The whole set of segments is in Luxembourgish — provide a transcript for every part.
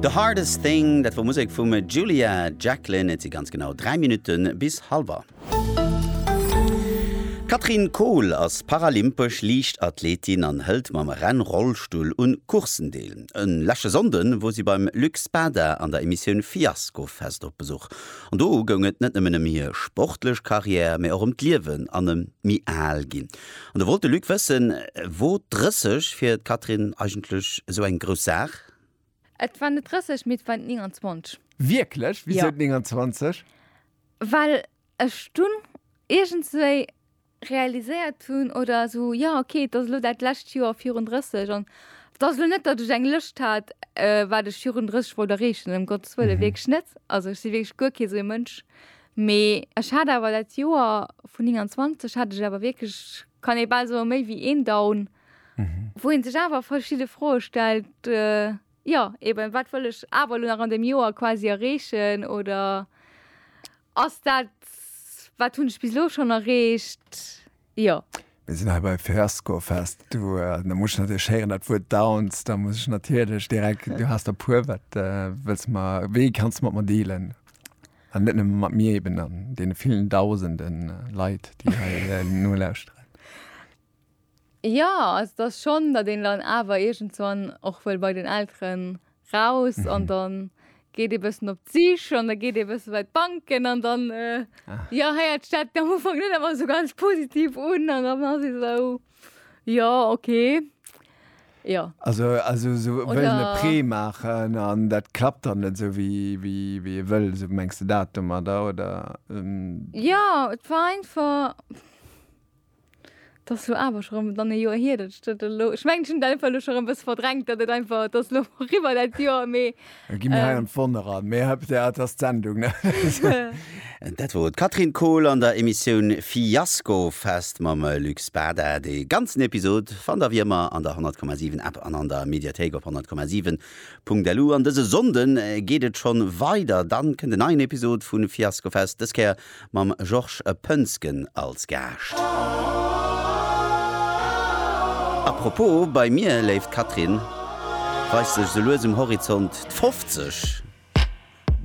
The Hardest Thing, dat wor Musek vum Julia Jacklin. Et si ganz genau 3 Minutte bis halwer. D'Catherine Kohl ass paralympesch Liichtathletin an hëlt mam Rennrollstull un Courssen deel. E leschte Sonnde wor si beim Luc Spada an der Emissioun Fiaskofest op Besuch. An do goung et net nëmmen ëm hir sportlech Karriär, mee och ëm d'Liewen an ëm d'Mi-Al-Ginn. An da wollt de Luc wëssen, wor d'Drësseg fir d'Catherine eigentlech esou eng grouss Saach? Et war net d'Drësseg, mee et war d'Nénganzwanzeg. Wierklech? Wisou d'Nénganzwanzeg? Well ech dunn iergendswéi realiséiert hunn, oder esou, jo, ok, et ass elo dat lescht Joer virun 30, an et ass elo net, datt ech eng Lëscht hat, wat ech virun 30 wollt erreechen, ëm Gottes Wëlle, wierklech net. Also ech si wierklech guer kee sou ee Mënsch. Mee ech hat awer dat Joer vun 29 hat ech awer wierklech, kann ee bal soe méi wéi een Down, wou ee sech awer verschidde Froe stellt, jo eben, wat wëll ech awer elo nach an deem Joer quasi erreechen oder ass dat, wat hunn ech bis elo schonn erreecht? Jo. Mir sinn hei bei Fiasco Fest. Du, da muss ech natierlech héieren, dat Wuert Downs, da muss ech natierlech direkt, du has der puer, wat wëlls de mer, wéi kanns de mat mer dealen? An net nëmme mat mir eben, an deene villen Dausende Leit, déi hei nolauschteren. Jo, also et ass schonn, datt een dann awer iergendwann och wëll bei den Elteren raus an dann geet ee bëssen op d'Sich an da geet ee bësse bei d'Banken an dann, jo, héiert d'Stad am Ufank net ëmmer esou ganz positiv un an dann ass ee esou, jo, okay, jo. Also esou wëllen e Prêt maachen an dat klappt dann net esou, wéi ee wëll, esou mengs de dat domadder, oder? Jo, et war einfach. 't ass lo awer scho rem dann e Joer hier dat ech dat elo, ech mengen ech hun dat einfach elo scho rem bessen verdrängt dat et einfach, 't ass lo riwwer dat Joer mee Da gi mir hei an d'Wonn eran. Mee hei op der, 't ass d'Sendung, ne? Dat wor d'Catherine Kohl an der Emissioun Fiasko Fest mam Luc Spada. De ganzen Episod fannt der wéi ëmmer an der 100,7 App an an der Mediathéik op 100,7.lu. An dëse Sonnden geet et schon weider, dann kënnt en neien Episod vun Fiasko Fest, dës Kéier mam Georges Poensgen als Gaascht. A propos, bei mir, léift Catherine, weist sech sou lues um Horizont d'Fofzeg.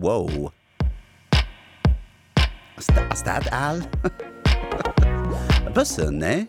Wow! Ass dat al? E bëssen, nee?